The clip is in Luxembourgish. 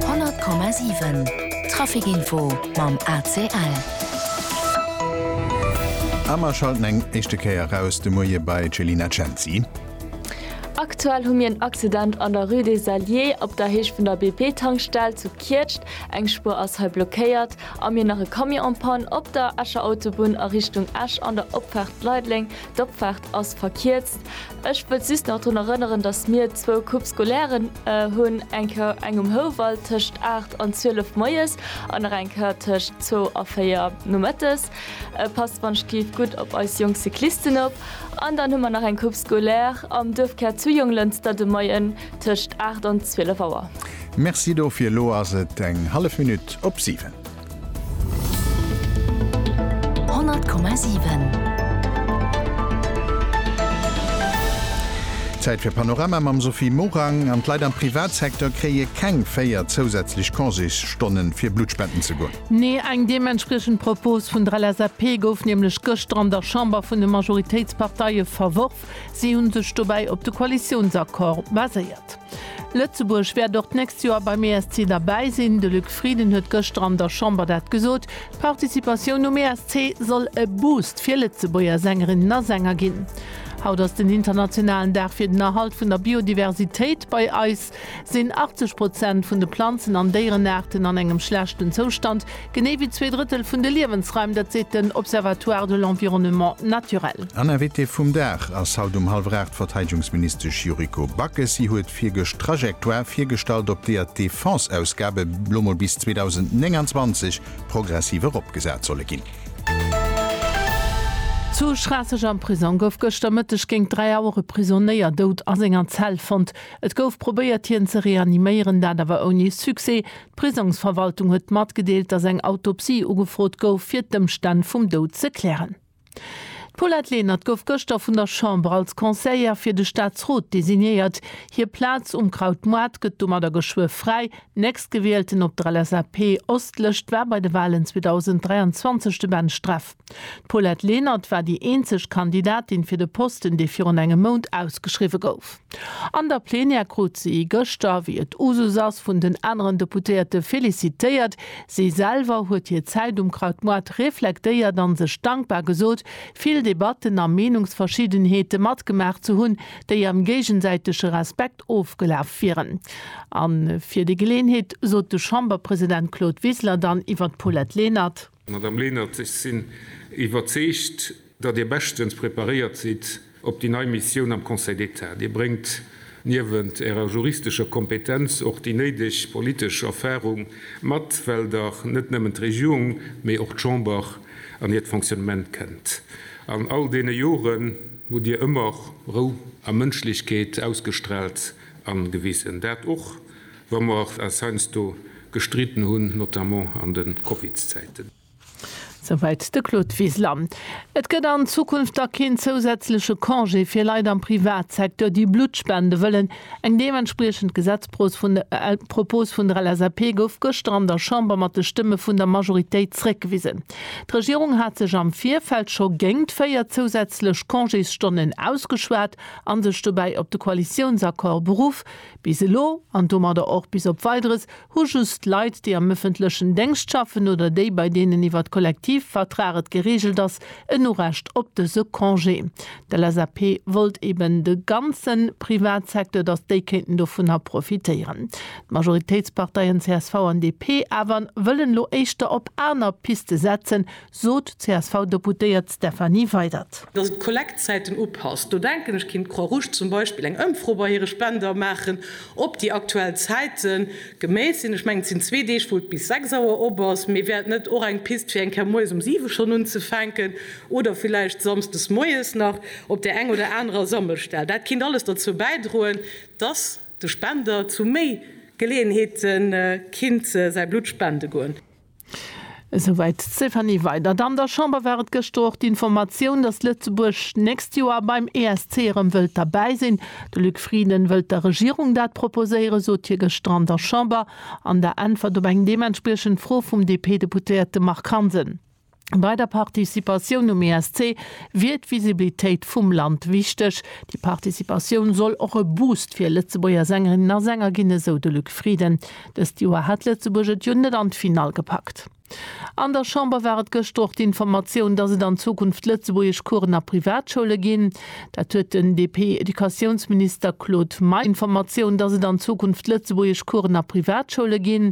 100,7 Trafic info mam ACL. A mer schalten eng éischte Kéier eraus de Moie bei d'Chelina Cenzi. Aktuell hu mir en Accident an der Rue des Alliés op der Heescht vun der BP-Tankstell zu Kietscht. Eng Spuer ass hei blockéiert a mir nach e Camion en panne op der Escher Autobunn a Richtung Esch an der Opfaart Leideleng. D'Opfaart ass verkierzt. Ech wëllt just nach drun erënneren, datt mir zwou Coupe scolairen hunn, eng Kéier eng um Houwald tëscht 8 an 12 moies an nach eng Kéier tëscht zwou a véier nomëttes. Passt wannschtgeet gutt op eis jonk Cyclisten op. An dann hu mer nach eng Coupe scolaire am Duerfkär zu Jonglënster de Moien tëscht 8 an 12 Auer. Merci dofir. Elo ass et eng hallef Minutt op siwen. Zäit fir Panorama mam Sophie Morang an d'Leit am Privatsecteur kréie keng 4 zousätzlech Congésstonnen, fir Blutt spenden ze goen. Nee, eng deementspriechend Propos vun der LSAP gouf nämlech gëschter an der Chamber vun de Majoritéitsparteie verworf. Si hu sech dobäi op de Koalitiounsaccord baséiert. Lëtzebuerg wäert och d'nächst Joer beim ESC derbäi sinn. De Luc Frieden huet gëschter an der Chamber dat gesot. D'Participatioun um ESC soll e Boost fir Lëtzebuerger Sängerinnen a Sänger ginn. Haut ass den internationalen Dag fir den Erhalt vun der Biodiversitéit. Bei eis sinn 80 Prozent vun de Planzen an Déierenaarten an engem schlechten Zoustand. Genee wéi zwee Drëttel vun de Liewensraim, dat seet den Observatoire de l'environnement naturel. An Invitée vum Dag ass haut um hallwer 8 d'Verteidegungsministesch Yuriko Backes. Si huet virgëscht d'Trajectoire virgestallt, op deeër d'Defense-Ausgabe lo mol bis 2029 progressiv eropgesat solle ginn. Zu Schraasseg am Prisong gouf gëschter Mëtteg géint 3 Auer e Prisonéier dout a senger Zell fonnt. Et gouf probéiert hien ze reaniméieren, dat awer ouni Succès. D'Prisongsverwaltung huet matgedeelt, datt eng Autopsie ugefrot gouf, fir d'Ëmstänn vum Doud ze klären. D'Paulette Lenert gouf gëschter vun der Chamber als Conseillère fir de Staatsrot designéiert. Hir Plaz um Krautmoart gëtt domadder geschwë fräi. Nächstgewielten op der LSAP-Ostlëscht war bei de Walen 2023 de Ben Streff. D'Paulette Lenert war déi eenzeg Kandidatin fir de Posten, dee virun engem Mount ausgeschriwwe gouf. An der Plenière krut si gëschter, wéi et Usus ass, vun den aneren Deputéierte felicitéiert. Si selwer huet hir Zäit um Krautmoart reflektéiert a sech dankbar gesot, vill Debatten a Meenungsverschiddenheete matgemaach ze hunn, déi am géigesäitege Respekt ofgelaf wieren. A fir déi Geleenheet sot de Chamberpresident Claude Wiseler dann iwwer d'Paulette Lenert. Madame Lenert, ech sinn iwwerzeegt, datt Dir beschtens preparéiert sidd op déi nei Missioun am Conseil d'État. Dir bréngt niewent Ärer juristescher Kompetenz och déi néideg politesch Erfarung mat, well Der net nëmmen d'Regierung, mee och d'Chamber an hiert Fonctionnement kennt. An all deene Joren hutt Dir ëmmer Rou a Mënschlechkeet ausgestraalt a gewisen. Dat och Wa mer och als heiansdo gestriden hunn, notamment an de Covidzäiten. Souwäit de Claude Wiseler. Et gëtt an Zukunft da keen zousätzleche Congé fir Leit am Privatsecteur, déi Blutt spende wëllen. Eng deementspriechend Gesetzpropos vun der LSAP gouf gëschter an der Chamber mat de Stëmme vun der Majoritéit zréckgewisen. D'Regierung hat sech am Virfeld scho géingt véier zousätzlech Congésstonnen ausgeschwat a sech dobäi op de Koalitiounsaccord beruff, Bis elo, an domadder och bis op Weideres, hu just Leit, déi am ëffentlechen Déngscht schaffen oder déi, bei deenen iwwer d'Kollektivvertrag et gereegelt ass, en Urecht op dëse Congé. D'LSAP wollt eben de ganze Privatsecteur, datt déi kéinten dovunner profitéieren. D'Majoritéitsparteien csv an DP awer wëllen elo éischter op aner Piste setzen, sot d'CSV-Deputéiert Stefanie Weydert. Datt et d'Kollektzäiten upasst, do denken ech, kéint d'Croix Rouge zum Beispill eng Ëmfro bei hire Spender maachen, ob déi aktuell Zäite geméit sinn. Ech mengen, et sinn zwee Deeg, wou et bis 6 Auer op ass. Mee wär et net och eng Pist, fir eng Kéier moies um 7 schonn unzefänken oder villäicht samsdes moies nach op där eng oder anerer Sammelstell? Dat kéint alles derzou bäidroen, datt de Spender zu méi Geleeënheete kinnt säi Blutt spende goen. Esouwäit d'Stéphanie Weydert. An der Chamber war et gëschter och d'Informatioun, datt Lëtzebuerg d'nächst Joer beim ESC erëm wëllt derbäi sinn. De Luc Frieden wëllt der Regierung dat proposéieren, sot hie gëschter an der Chamber an der Äntwert op eng deementspriechend Fro vum DP-Deputéierte Marc Hansen. Bei der Participatioun um ESC wier d'Visibilitéit vum Land wichteg. Déi Participatioun soll och e Boost fir Lëtzebuerger Sängerinnen a Sänger ginn, esou de Luc Frieden. Dëst Joer hat Lëtzebuerg et jo net an d'Finall gepackt. An der Chamber war et gëschter och d'Informatioun, dass et an Zukunft Lëtzebuergesch Coursen a Privatschoule ginn. Dat huet den DP-Educatiounsminister Claude Meisch Informatioun, dass et an Zukunft Lëtzebuergesch Coursen a Privatschoule ginn.